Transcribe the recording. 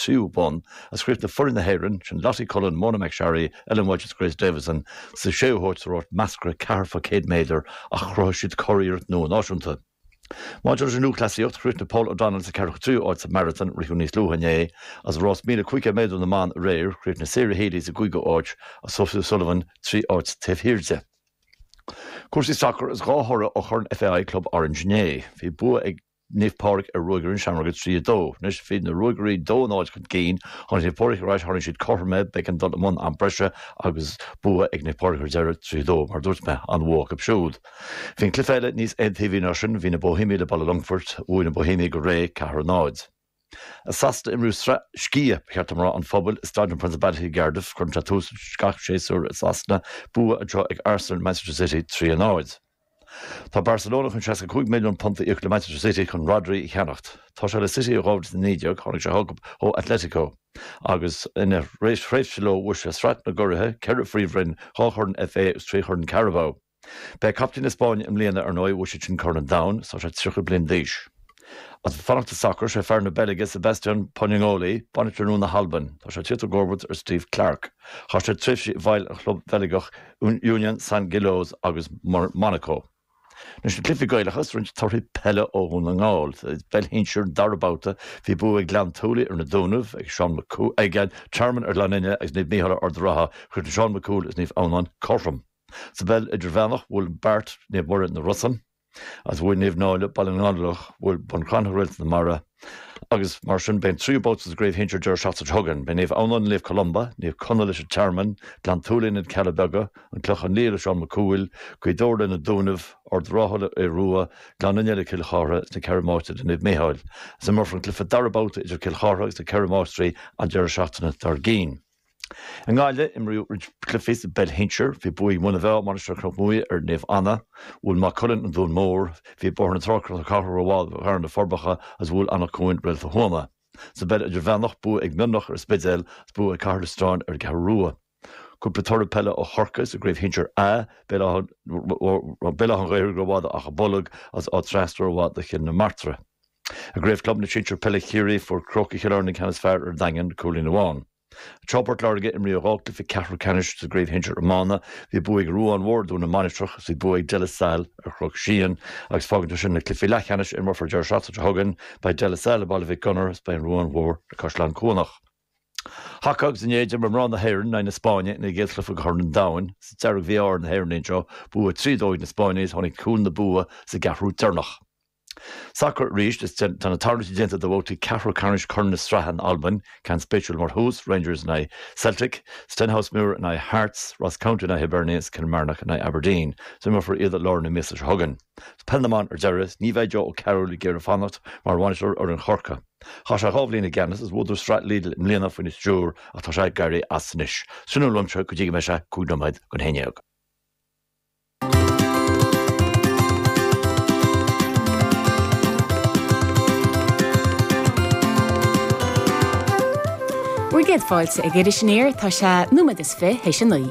tríú bonn is chríochnaigh foireann na hÉireann, sin Lottie Cullen, Mona McSharry, Ellen Walshe agus Grace Davison, sa séú háit sa rás meascra ceathair fá 100 méadar ach chruthaigh siad curiarracht nua náisiúnta. Maidir leis an lúthchleasaíocht, chríochnaigh Paul O'Donnell sa 43ú áit sa maratón a ritheadh níos luaithe inné agus i rás 1500 méadar na mban aréir, chríochnaigh Sarah Healy sa gcúigiú áit agus Sophie O'Sullivan trí áit taobh thiar di. Cúrsaí sacair Is dhá thoradh ó Chorn FAI Club Orange inné. Bhí bua ag. Naomh Pádraig ar Ruagairí na Seamróige 3, 2. Anois bhí na Ruagairí 2 0 chun cinn. Tháinig Naomh Pádraig ar ais, tharraing siad cothrom é, b'éigean dul i mbun am breise agus bua ag Naomh Pádraig ar deireadh, 3 2. Mar a dúirt mé, an-bhua acu siúd. Bhí an cluiche eile níos aontaobhaí ná sin, bhí na Boihéamaigh le Baile an Longfoirt, bhuaigh na Boihéamaigh go réidh, 4 0. i Sasana imríodh sraith Sciath Charthanachta an Phobail i Staid an Principality i gCardiff cuireann sé tús gach séasúr i Sasana, bua anseo ag Arsenal, Manchester City 3-0. Tá Barcelona chun £65 milliún a íoc le Manchester City chun Rodri a cheannacht. Tá sé le City ó 2019, tháinig sé chucu ó Atletico agus ina thréimhse leo bhuaigh sé Sraith na gCuradh, ceithre phríomhroinn, dhá chorn FA agus trí chorn Carabao. Ba é captaen na Spáinne i mbliana, ar ndóigh, bhuaigh siadsan Corn an Domhain is tá sé 30 bliain d'aois. Ach ag fanacht sa sacar, sé fear na Beilge, Sébastien Pocognoli, bainisteoir nua na hAlban. Tá sé ag tíocht i gcomharbacht ar Steve Clarke. Chaith sé tréimhsí i bhfeighil an chlub Bheilgeach Union Saint-Gilloise agus Monaco. Anois na cluichí Gaelacha 's roinnt torthaí peile ó Dhún na nGall. Sa bpeil shinsir, dara babhta, bhí bua ag Gleann tSúilí ar na Dúnaibh, ag Seán Mac Cú, ag an Tearmann ar Ghleann Fhinne agus Naomh Micheál ar Ard an Rátha, chríochnaigh Seán Mac Cumhaill is Naomh Adhamhnáin cothrom. Sa bpeil idirmheánach bhuail Beart Naomh Muire na Rosann agus bhuail Naomh Náille Baile na nGallóglach bhuail Bun Cranncha Réalta na Mara agus mar sin beidh an tríú babhta sa gcraobh shinsir deireadh seachtaine seo chugainn. Beidh Naomh Adhamhnáin le Naomh Columba, Naomh Conaill leis an Tearmann, Gleann tSúilí le na Cealla Beaga, An Clochán Liath le Seán Mac Cumhaill, Gaoth Dobhair le na Dúnaibh, Ard an Rátha le Aodh Rua, Gleann Fhinne le Cill Chartha is na Ceithre Máistrí le Naomh Micheál agus imreofar an cluiche dara babhta idir Cill Chartha agus na Ceithre Máistrí an deireadh seachtaine dár gcionn. I nGaillimh, imríodh roinnt cluichí sa bpeil shinsir. Bhí bua ag Muine Mheá, Mainistir Chnoc Muaidhe ar Naomh Anna. Bhuail Maigh Cuilinn An Dún Mór. Bhí Bóthar na Trá, Cnoc na Cathrach rómhaith do Bhearna, Na Forbacha agus bhuail Anach Cuain Réalta Thuama. Sa bpeil idirmheánach, bua ag Mionlach ar An Spidéal agus bua ag Cathair Loistreáin ar An gCeathrú Rua. Cúpla toradh peile ó Chorcaigh sa gcraobh shinsir A, Béal Átha an Ghaorthaigh rómhaith d'Achadh Bolg agus Áth Trasna rómhaith do Chill na Martra. I gCraobh Club na Sinsear Peile Chiarraí fuair Crócaigh Chill Airne an ceann is fearr ar an Daingean, cúilín amháin. I bPort Láirge imríodh dhá chluiche ceathrú ceannais sa gCraobh Shinsear Iomána. Bhí bua ag Ruán Mór ar Dhún na Mainistreach agus bhí bua ag De La Salle ar Chnoc Síon agus fágann sé sin na cluichí leathcheannais a imreofar deireadh seachtaine seo chugainn. Beidh De La Salle le Baile Mhic Gonair agus beidh an Ruán Mór le Caisleán Cuanach. Haca agus inné d'imir mná na hÉireann in aghaidh na Spáinne ina gcéad chluiche de Chorn an Domhain. sa mBeilg. Mí-ádh ar na hÉireannaigh anseo, bua 3 2 ag na Spáinnigh is tháinig cúl na bua sa gceathrú deireanach. Sacar arís, is tá na tarluití déanta do bhabhtaí ceathrú ceannais Chorn na Sraithe in Albain, ceann spéisiúil mar thús, Rangers in aghaidh Celtic, Stenhousemuir in aghaidh Hearts, Ross County in aghaidh Hibernian is Kilmarnock in aghaidh Aberdeen. So imreofar iad i lár na míosa seo chugainn. Peil na mBan ar deireadh, ní bheidh Joe Ó Cearúil ag iarraidh fanacht mar bhainisteoir fhoireann Chorca. Chaith sé dhá bhliain i gceannas is bhuadar Sraith Lidl i mbliana faoina stiúr ach tá sé ag éirí as anois. Sin é uaimse go dtí go mbeidh sé cúig nóiméad chun a haon dhéag. Bhur gcéad fáilte ag Iris Aniar, tá sé nóiméad is fiche théis a naoi.